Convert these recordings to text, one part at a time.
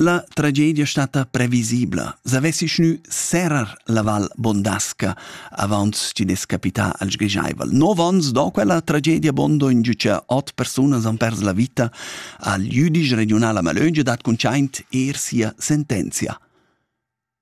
La tragedia stata previsibla. S'avessi gnü serrer la Val Bondasca avaunt chi'd es capità al sgrischaivel. Nov ons do quella tragedia bondo in giü cha ot persunas han pers la vita al jüdisch regiunal a Malöngia dat cuntschaint eir sia sentenzia.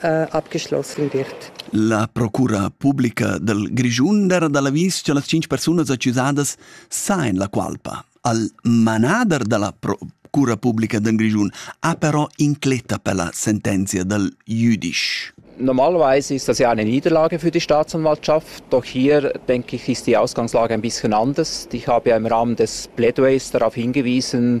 abgeschlossen wird. La procura publica del Grischun era da l'avis che las cinc persunas accusadas sa en la qualpa. Al manader della procura publica del Grischun ha però incletta per la sentenza del jüdisch. Normalerweise ist das ja eine Niederlage für die Staatsanwaltschaft, doch hier denke ich, ist die Ausgangslage ein bisschen anders. Ich habe ja im Rahmen des Plädoyers darauf hingewiesen,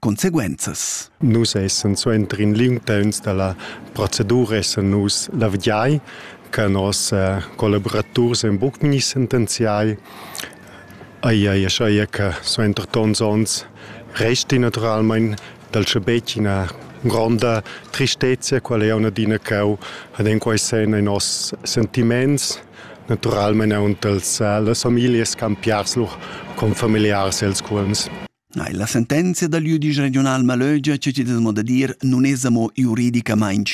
conseguenzas. Nus essan suentrin liungtauns dalla procedura essan nus la vigiai che nos eh, collaboraturs ein buc ni sentenziai ai ai ai che suenter tons ons resti naturalmein dal schabetg ina gronda tristezia qual è una dina cau ad en quai sen ai nos sentiments naturalmein aunc als eh, las familias campiars lo con familiars els cuolms Ei, la sentenzia dal jüdisch regiunal malögia che ti des mo da dir nun es amo juridicamaing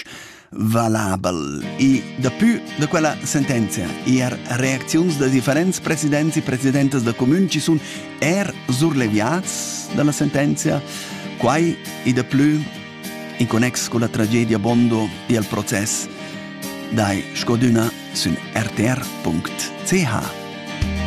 valabel. E dapü da quella sentenzia eir reacziuns da differents presidents e presidentas da comüns ci sun eir surleviats dalla sentenzia, quai e daplü in connex con la tragedia Bondo e al process dai scodüna sün rtr.ch.